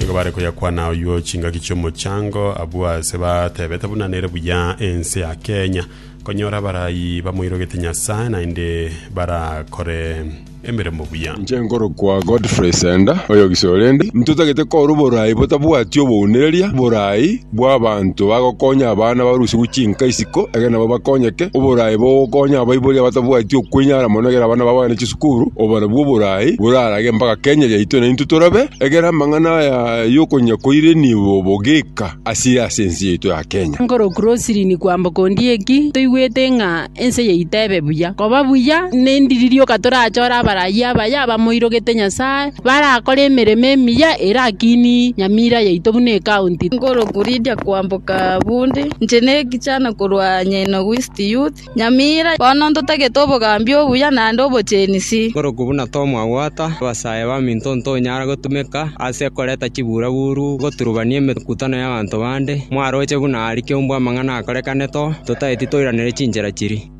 Nigo bare koyakwana oyuo chingaki chi'omochango, abwo aase batebete buna nere buya ense ya Kenya konyora abarayi bamoirogete Nyasae naende barakore emeremo buya. Inche nkorokwa Godfrey Senda, oyogisore ndi. Ntotagete korwa borai botabwati obounereria, borai. bw'abaanto bagokonya abana barusigwe chinka isiko, egere nabo bakonyeke. Oboraai bogokonya abaibori abatabwati okwenyara mono egere abana babo bagende chisukuru, obarabwo oboraai borarage mpaka Kenya yaito naintwe torabe, egere amang'ana aya y'okonyia koire nigo bogeka asire ase ense yaito ya Kenya. Nkorokwa Roslyn Kwamboka Ondieki, toigwete ng'a Ense yaito ebe buya. Koba buya nendi ririoka torachore abarayia abaye abamoirogete Nyasae, barakore emeremo emiya erakini nyamira yaito buna ecounty. Ngoroku Lydia koamboka bunde, inche ne ekijana korwa Nyainogu East Youth, Nyamira. Bono ntotagete obogambi obuya naende obochenisi. Ngoroku buna Tom Awata, abasae baminto ntonyara gotumeka ase koreta chibura buru, goturubania emekutano y'abanto bande, mwaroche buna aria kiombwe amang'ana aa. Nakorekane to, totaeti toiranere chinchera chiri.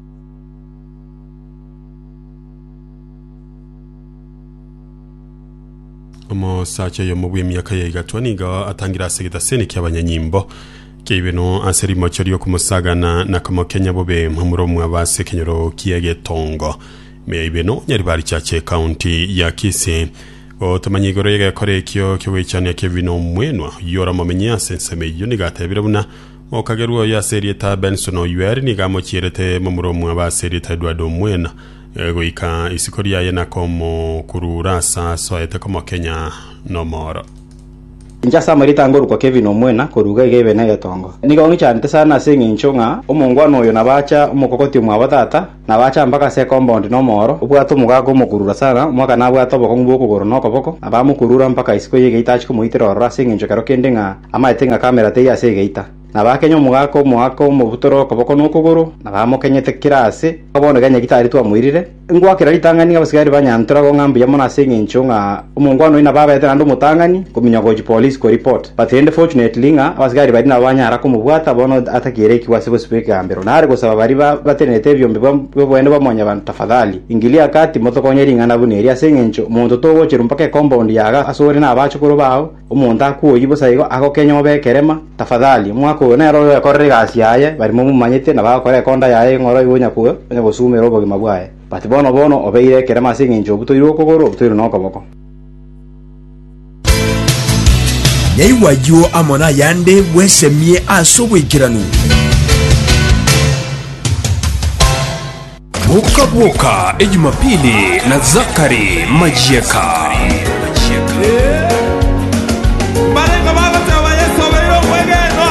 Omosacha oyomo bw'emiaka ya igatwa nigo atangire ase egetaseni ki'abanyanyimbo kiaibeno ase rimocho ri'okomosagana na komokenya bobe omura omwabo ase ekenyoro ki'egetongo meya ibeno Nyaribarichache ekaunti ya Kisii gotomanya igoro y'egekora ekio ki'ogwechania kebino omwenwa yora momenye ase ensemo eyio nigo atebire buna Okagerwa oyo ase erieta Benson Oyueri nigo amochierete momura omwabo ase erieta Edward Omwena goika isiko riaye na komokurura ase asoete komokenya nomoro. Inche ase amarita ngorokwa Kevin Omwena koruga iga Ibe negetonga. Nigo ngichanete sana ase engencho ng'a omongwana oyo nabo acha omokogoti omwabo tata. Nabacha mpaka ase ekomboundi n'omooro, obwate omogaka omokurura sana, omwaka nabwate obokong'u bw'okogoro na okoboko, na bamokurura mpaka isiko y'egeita achie komoitera ororo ase engencho ekero kende ng'a amaete ng'a kamera teiyo ase egeita. Na bakenya omogaka omoaka omobutore okoboko na okogoro, na bamokenyete kera aase, mpaka bono Kenya gitari twamoirire. Ngwakera ritang'ani abasigari ba Nyantura gong'a mbuya mono ase engencho ng'a Omongwana oyio nabo abaete naende omotang'ani kominyoka gochia polisi ko report, but rende fortunately ng'a abasigari baria nabo banyara komobwata bono atakiirekigwa ase bosibwa ekegambero. Nare gosaba baria batenenete ebiombe bw'oboende bwa Mwanyabanto, Tafadhali, ingilia kati motokonye ring'ana buna eri, ase engencho omonto togocherwa mpaka ecompound yaga ase ore nabachukuru bao, omonto akuoyi bosa igo agokenya obe ekerema, tafadhali, omwaka oyo nere oyoekorera egasi yaye baria momomanyete na bagokora ekonda yaye ng'oro igo onya gosumera obogima bwaye. But bono, bono obeire ekerema ase engencho obutoirwe okogoro, obutoirwe nokoboko. Naigwe ayio amo nayande bwesemie ase oboikeranu. Boka Boka e Jumapili na Zachary Majieka. Mbareng'o bagoteba Yesu obeire omwegenwa.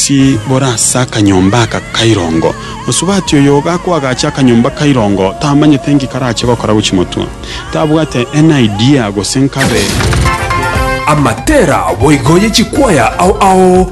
Sibora ase akanyomba aka kairongo. Mosubati oyo gakoagacha akanyomba kairongo tamanyete nki karache gokora gochi motwe. Tabwate any idea gose nkabe. Amatera boigo ye chikwaya ao ao.